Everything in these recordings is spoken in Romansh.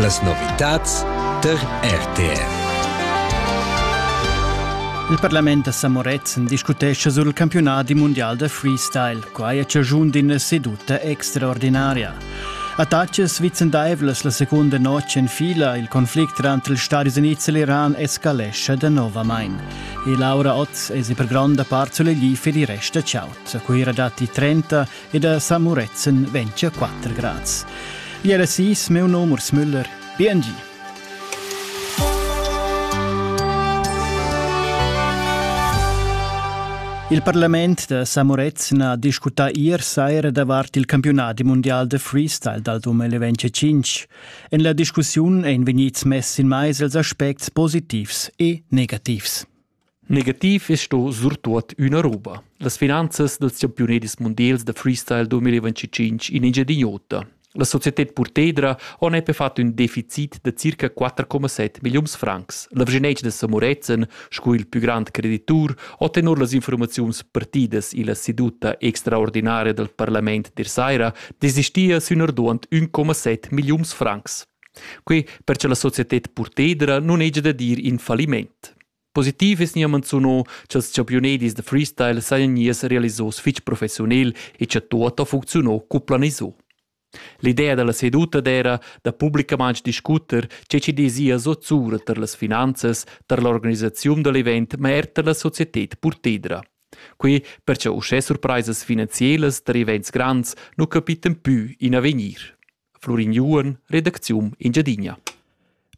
Las novitads tar RTR. Il parlament a Samorezzen discutescha sul campiunat mundial da freestyle. Quai è chaschun d'ina seduta extraordinaria. Attacas vicendaivlas la seconda notg en fila, il conflict tranter ils Stati Unids e l'Iran escalescha danovamain. E Laura Otz è per gronda part sull'egli per il rest da ciao. A Cuira datti 30 e da San Murezzan ventia 4 grads. Iera sis, meu nom Urs Müller, BNG. Il parlament da Samorezzen ha discutà ier saira davart il campiunat mundial de freestyle dal 2025. En la discussiun ein vegnids mess in mais els aspects positivs e negativs. Negativ es sto surtuot üna roba. Las finanzas dals champiunedis mundials da freestyle 2025 in Engiadin'Ota. La societed Purtedra on epe fat ün deficit da circa 4,7 milliuns francs. L'avgenetsch da Samorezen, sco il pü grand creditur, ho tenor las informaziuns partidas illa seduta extraordinaria dal parlament der saira desistia sün arduant 1,7 milliuns francs. Quei per che la societed purtedra nun hegia da dir in falliment. Positiv es gnir manzuno cha'ls champiunedis da freestyle sajan gnius realisos fich professiunel e cha tuot ha funcziunò cu planiso. L'idea da la seduta d'eira da publicamaing discuter che chi dezia zozzura tar las finanzas, tar l'organisaziun da l'event, ma er tar la societed purtedra. Quei per cha uschè surpraisas finanzielas tar events grands nu capitan pü in avegnir. Florin Juon, redacziun Engiadina.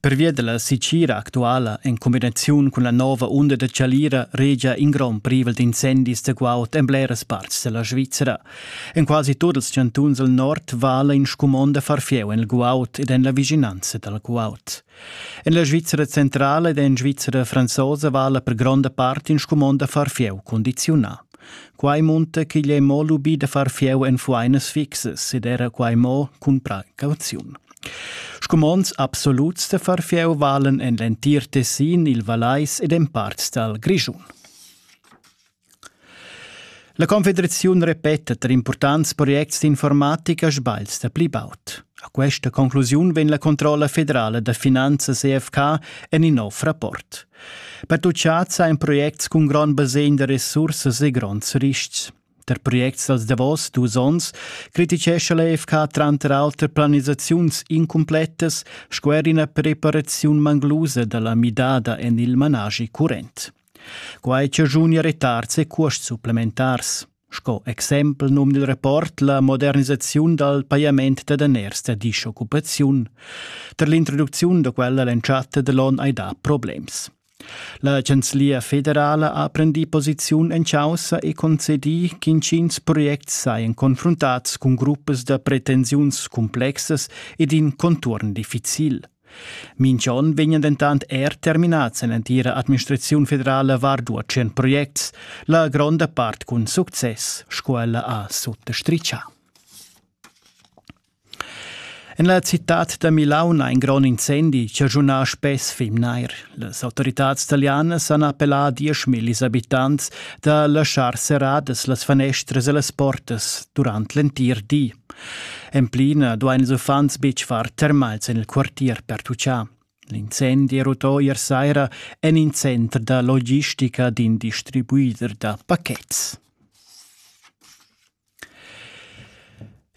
Pervia dalla sicira actuala en combinaziun cun la nova unda da chalira regia in grond privel d'incendis da guaud en bleras parts della Svizzera. En quasi tut ils chantuns al nord vala in scumond da far fieu en il guaud ed en la vicinanza dal guaud. En la Svizra centrala ed en Svizra franzosa vala per gronda part in scumond da far fieu condiziunà. Quai munta ch'igl è mo lubì da far fieu en fuainas fixas ed era quai mo cun precauziun. Scumonds absoluts da far fieu valen en l'entir Tessin, il Vallais ed en parts dal Grischun. La confederaziun repeta tar impurtants projects d'informatica sbagls da pli baud. A questa conclusiun vegn la controlla federala da finanzas EFK en in nov rapport. Pertucciads ein projects cun grond basegn da resursas e gronds riscs. Per projects dals davos dus onns criticescha l'EFK tranter auter planisaziuns incumplettas sco er ina preparaziun manglusa dalla midada en il managi current. Quai chaschunia retars e cuosts supplementars. Sco exempel num dil rapport la modernisaziun dal pajament da daners da dischoccupaziun. Per l'introducziun da quella l'entschatta dell'on hai dà problems. La Chanzlia federala ha prendì posiziun en caussa e concedì ch'intgins projects sajan confruntats cun gruppas da pretensiuns cumplexas ed in conturn difficil. Minch'on vegnan dentant er terminats en l'entira administraziun federala vardua tschient projects, la gronda part cun success, scuela ha suttostrichà. En la citad da Milaun ha in grond incendi chaschunà spess fim nair. Les autoritads italianas han appellà a dieschmillis abitants da laschar serradas las fanestras e las portas durant l'entir di. En plina duain ils uffants betg far termals en il quartier per tutschar. L'incendi rutò ier saira en in center da logistica d'in distribuider da pachets.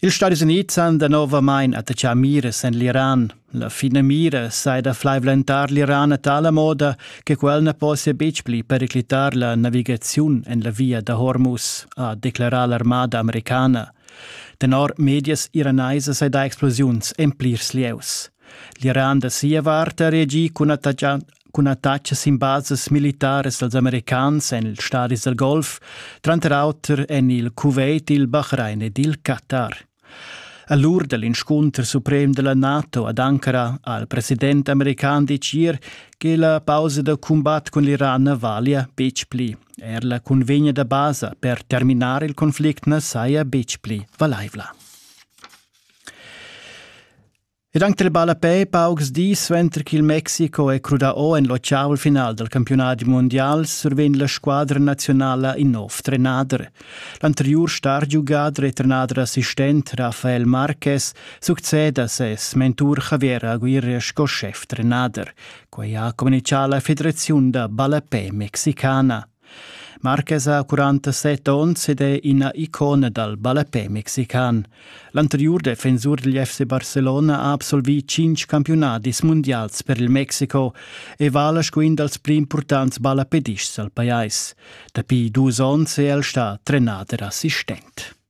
Ils Stadis Unids han danovamain attachà mires en l'Iran. La finamira sai da flaivlentar l'Iran a tala moda che quel na possia betg pli periclitar la navigaziun en la via da Hormuz, ha declarà l'armada americana. Tenor medias iranaisas sei da explosiuns en plirs lieus. L'Iran da sia vart ha reagì cun attacca cun attaccs sin bases militaras dals americans en ils stadis dal Golf, tranter auter en il Kuwait, il Bahrain ed il Qatar. A l'ur da l'inscunter suprem da la NATO ad Ankara ha il president american ditg ier che la pausa da cumbat cun l'Iran na valia betg pli. Er la cunvegna da basa per terminar il conflict na saja betg pli valaivla. Ed anc dal ballapè paucs dis suenter ch'il Mexico è crudà o en l'otschavel final dal campiunadi mundial survegn la squadra naziunala in nov trenader. L'anteriur stargiugader e trenader assistent Rafael Marquez succeda ses mentur Javier Aguirre sco schef trenader. Quai ha communitgà la federaziun da ballapè mexicana. Marquez ha 47 onns ed è ina icona dal ballapè mexican. L'anteriur defensur degl FC Barcelona ha absolvì tschintg campiunadis mundials per il Mexico e vala sco in dals pli impurtants ballapedists al pajais. Dapi dus onns è el stà trenader assistent.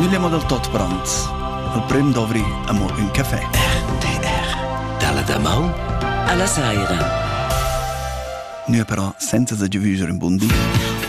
Nilemo dal tot brand. Il prim dovri amur ün café. RTR. Dalla damaun alla saira. Nö però senza sa giovüser in bun di.